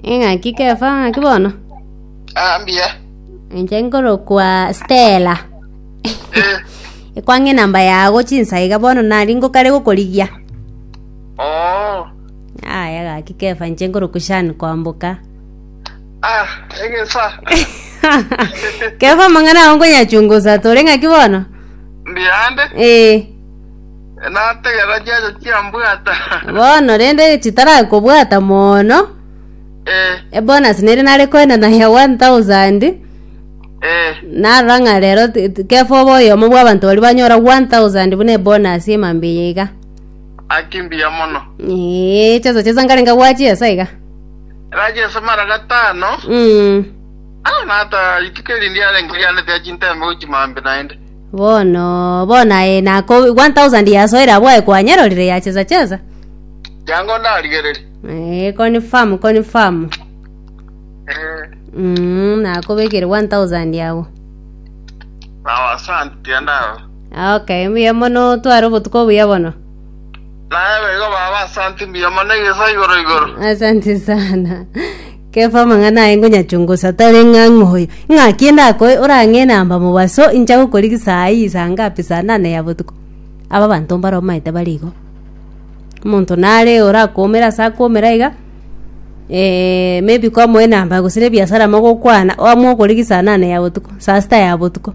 Eng'aki Kefa ng'aki bono. Ah, mbuya. Inche nkorokwa Stella. Eh, Ekwang'e namba yago chinsaiga bono nari ngokare gokorigia. oh. Aya gaki Kefa inche nkorokwa Shan kwamboka. Ah, egesa. Kefa mang'ana ago nkonyachungusa tore ng'aki bono. Mbuya ande. Eh. Nategera chiacho chiambwata. Bono rende chitarakobwata mono Eh, ebonus nere nare koenana ya 1000 eh. narora ng'a rero ti- ti- kefa oba oyomo bwa abanto baria banyora 1000 buna ebonus emambe eye iga Akimbiya mono. ee cheso chesa nkarenga gwachiesa iga Raje ase mara gatano. mm. Ah, nata rituko erindi arenge rianete achintembe gochimambe naende. Bono, bono aye nako 1000 years oira bwaye kwanyerorire ya chesa chesa. Yango ndarigererie. Eh, confirm, confirm. Eh, Mm, nakobekire 1000 yao. sawa asante tienda. Okay, mbuya mono tware obotuko obuya bono. Naye bego baba asante mbuya mono igesa igoro igoro. Asante sana. Kefa amang'ana aye ngonyachungusa, tari ng'a ng'oyo. Ing'aki ndakoe orang'e na mbamo baso, incha gokorigia saa eye saa ngapi, saa nane ya botuko. Aba abanto mbare omaete bare igo. Omonto nare orakoomera ase akoomera iga, eh, maybe kwamoe na mbamo gose na ebiasara mogokwana, oamue okorigia saa nane ya botuko, saa sita ya botuko.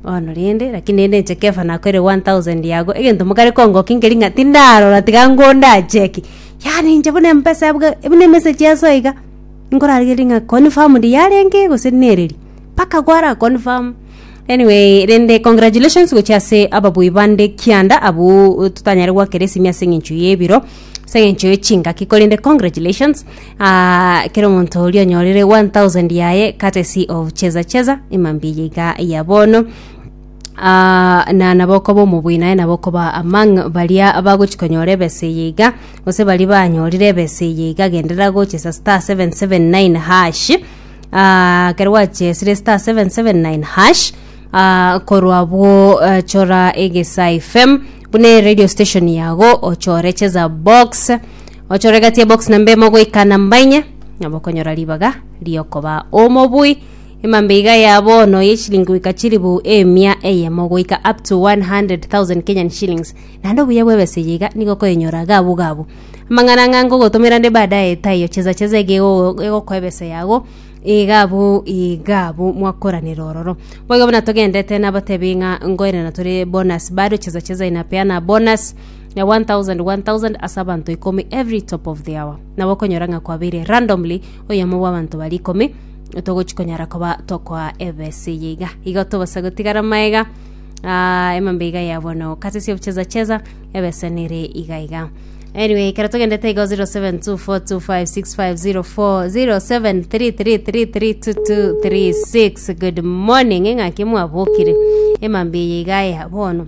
Bono rende, lakini rende inche Kefa nakoeire one thousand yago, egento mokare kongokia nkeri ng'a tindarora tiga ngondache ki. Yaani inche buna embesa bwe buna emessage ya Yeso iga nkorarigereria ng'a confirmed yarenge gose nereri mpaka gwara confirm anyway rende congratulations gochia ase ababui bande kianda abwo totanyare gwakera esimi ase eng'encho y'ebiro ase eng'encho ye chingaki korende congratulations ah, kera omonto oria onyorire 1000 yaye courtesy of cheza cheza emambia eye iga ya bono na nabo okoba omobuya naye nabo okoba among baria bagochia konyora ebesa eye iga, gose baria banyorire ebesa eye iga genderera gochesa star seven seven nine hash ah, ekero gwachesire star seven seven nine hash ah, korwa abwo eh, chora egesa fm buna eradio station yago ochore cheza box ochore egati ya box namba emo goika namba inye nabo okonyora ribaga riokoba omobui. Emambeiga ya bono ye chilingi goika chilifu emia eyemo goika up to 100,000 Kenyan shillings, naende obuya bw'ebesa eye iga nigo okoyenyora gabu gabu. Amang'ana ang'e nkogotomera nde baadaye taiyo, cheza cheza iga ego- egokoa ebesa yago iga abu iga abu mwakoranera ororo. Boigo buna togendete nabatebi ng'a nkoirana tore bonus bado cheza cheza inapeana bonus ya 1000 1000 ase abanto ikomi every top of the hour. Nabo okonyora ng'a kwabeire randomly oyomo bw'abanto baria ikomi, togochi konyara koba tokoa ebesa eye iga igo tobasa gotigara maega ah, emambe iga ya bono kase sia obucheza cheza ebesa nere iga iga anyway ekero togendete igo 07242565040733332236 good morning ng'aki mwabokire emambe eye iga ya bono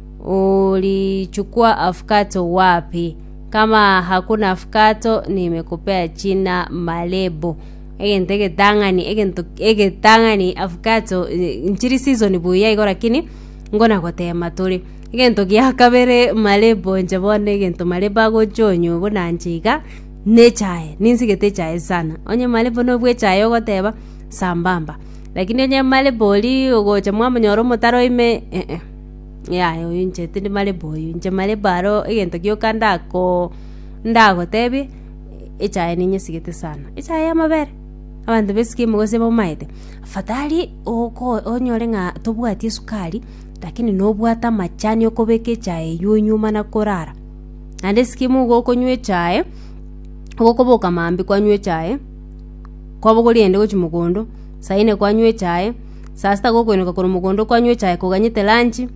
Ulichukua afukato wapi? Kama hakuna afukato nimekupea china malebo. Egento egetang'ani egento egetang'ani afukato nchiri season buya igo lakini ngona gotema tore. Egento gia kabere malebo inche bono egento malebo agochia onywe buna inche iga ne echae ninsigete echae sana. Onye malebo no bwe echae ogoteba sambamba lakini onye malebo oria ogocha mwamonyora omotaro ime eh. Yaya oyo inche tindi marebo oyo, inche marebo aro egento gioka ndako ndagotebie, echae ninyesigete sana, echae ya amabere, abanto baisiko ime gose bamaete, afadhali oko onyore ng'a tobwati esukari lakini nobwate amachani okobeka echae eywo onywe mana korara. Naende esike ime nigo okonywa echae, ogokoboka mambia kwanywa echae, kwabogori eyende gochia mogondo, saa ine kwanywa echae. Saa sita gokoineka korwa mogondo kwanywa echae koganyete lanchi,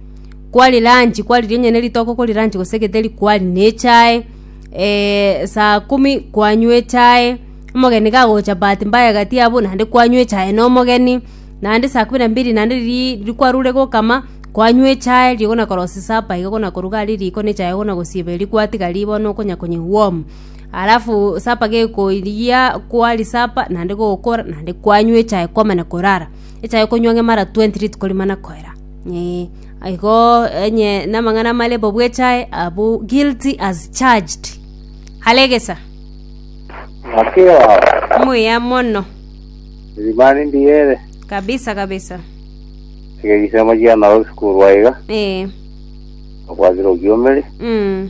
kwaria lanchi kwariria onye ne ritoke okoria lanchi gose getheri kwaria na echae, eh, saa kumi kwanywa echae, omogeni gagocha bahati mbaya egati yabo naende kwanywa echae na omogeni, naende saa kumi na mbili naende riria riria kwarure gokama kwanywa echae riria ogana korosia supper iga ogana koruga aria riko na echae ogana gosiba eria kwatigaria bono okonya konye warm. Alafu sapa gekoiyia kwari sapa naende gokora naende kwanywa echae kwamana korara. Echae okonywa ng'a mara twenty rituko tikoria mana koera eeh. Igo onye na amang'ana amare bo bwa echae abwo guilty as charged are egesa Omokia obo. omuya mono Erimani ndiye ere. kabisa kabisa Tiga egisemo kiane ore gosukurwa iga. eeh Obwate rokiomeri. mm.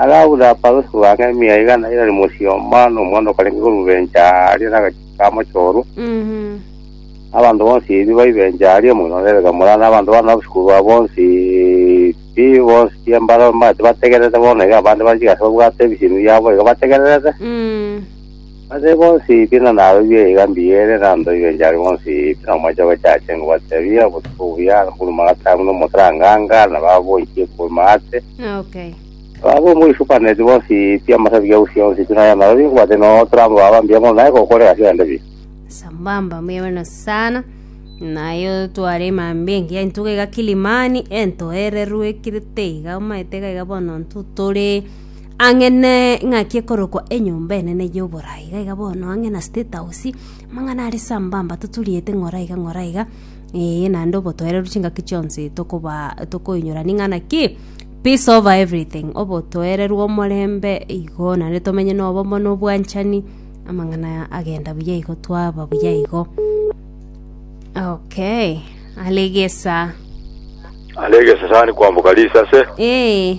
Agabura abarusi ba ng'eria igana erari mochie oo, mambia nomonto okarenge korubencha aria nagachiko ka mochoro, na abanto bonsi ebi baibencha aria omogina o Rebeka mora, na abanto bane obosikuuru bwabo bonsi pi, bonsi chi'embaro mbare tibategererete, bono iga abande banchika ase babwate ebisiimi biabo iga bategererete. Ase bonsi buna narorire iga mbiya ere, na ndoiyo inche aria bonsi buna omochie gochacha engo batebie, Obotuko buya, na mobori magatang'u, na omosaranganga, na baboichie korwa maate, Okay. na babombe oisupaneti bonsi pi amasabigi a usi onsi pi naye narorire nkobate no otorambe baba mbiya mono naye kokore gasi aende pi. Sambamba mbuya mono sana naye otware emambia engiya intuga iga kilimani entoererwe kirite iga omaete iga iga bono intwe tore ang'e ne eng'aki ekorokwa Enyomba Enene y'Oborai, iga iga bono ang'e na State House, amang'ana are ase ambamba toturiete ng'ora iga ng'ora iga, eeh naende obotoereru chingaki chionsi tokoba tokoinyora ning'a ng'a ki, peace over everything, obotoereru omorembe igo naende tomenye na obomo na obwanchani, amang'ana aya agenda buya igo twaba buya igo. Okay, are egesaa. Are egesesani kwamboka risase. Eeh.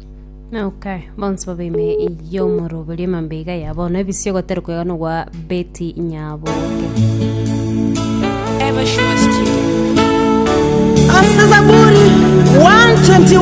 Okay, bonsi babaime yomoro bali mambega ya bono ebisio gotari kwega no gwa beti nyabo. Ever Sure Studio. Ase Zaburi 121